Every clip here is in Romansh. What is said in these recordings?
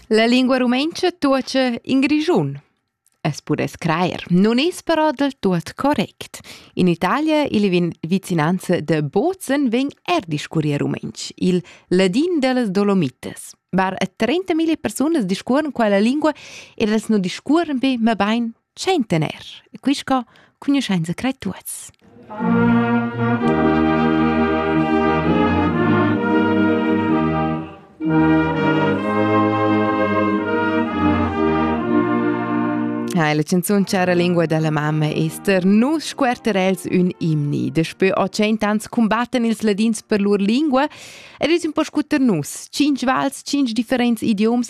La lingua rumentscha tuocha in Grischun. Es pudess crajer, non es però del tuot correct. In Italia il vicinanza de Bozen ven er discurrir rumenc, il ladin delle Dolomites. Bar a 30.000 persunas discuoren quella lingua ed els non discuoren be, ma bain tschentaner e quist co cugnuschainsa crai tuots. Ja, la canzun Chara lingua della mamma Esther nu scuerter els ün imni. Daspö 800 ans combatten ils ladins per lur lingua ed es un po scuter nus. Cinc vals, cinc differents idioms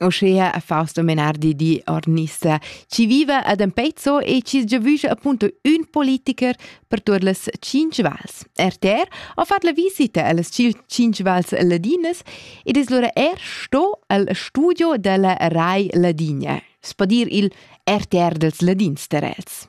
uschea a Fausto Menardi di Ornissa, chi viva ad Empezzo e chi giavüscha appunto ün politiker per tuot las cinc vals. RTR ha fat la visita a las cinc vals ladinas ed es lura er sto al studio della Rai Ladinia, spa dir il RTR dels Ladins Terels.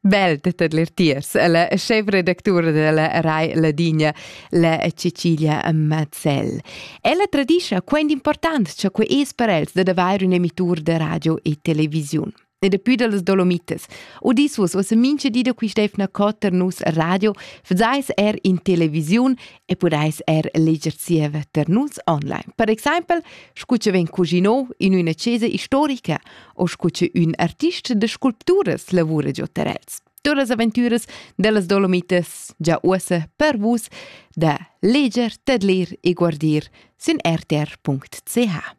Bel dettet l'ertiers, la chef redactura della Rai Ladina, la Cecilia Mazzell. Ella tradischa quant important cha que es per els dad avair un emitur de radio e televisiun. E daplü da las Dolomites. Odissus uossa mincha di da quist'efna cot ter nus radio, fazais er in televisiun e podais er leger zieva ter nus online. Per exaimpel, scu cha vegn cusino in üna chesa istorica o scu che ün artist de sculpturas lavura giò tar els. Todas las aventüras dellas Dolomites già uossa per vus da leger, tedlir e guardir sin rtr.ch.